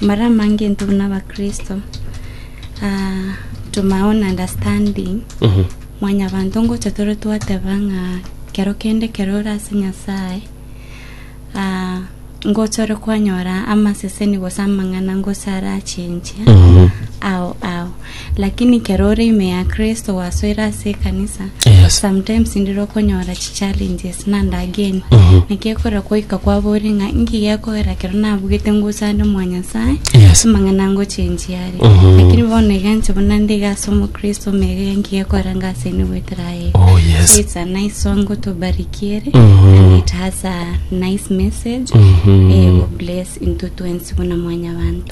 mara amange intwe buna abakristo ah, to my own understanding Mhm. mwanyabanto ngocha tore twateba ng'a kero kende kero ore ase nyasaye ah, ngocha ore kwanyora amaseseni gose amang'ana ngocha arachenchia Mhm. ao ao Lakini kera ore ime ya Kristo gwasoire ase ekanisa, Yes. sometimes ndire okonyora chichallenges nandageni. Mhm. Naki ekore goika kwabori ng'a nki gekogera kero nabugete ngusande mwa Nyasae, Yes. amang'ana ngochenjia are. Mhm. Lakini bono iganche buna ndige ase omokristo omegega nki gekogera ngasende goetera aye. Oh, yes. So it's a nice song gotobarikiere Mhm. and it has a nice message. Mhm. Eh, God bless into twensi buna mwanyabanto.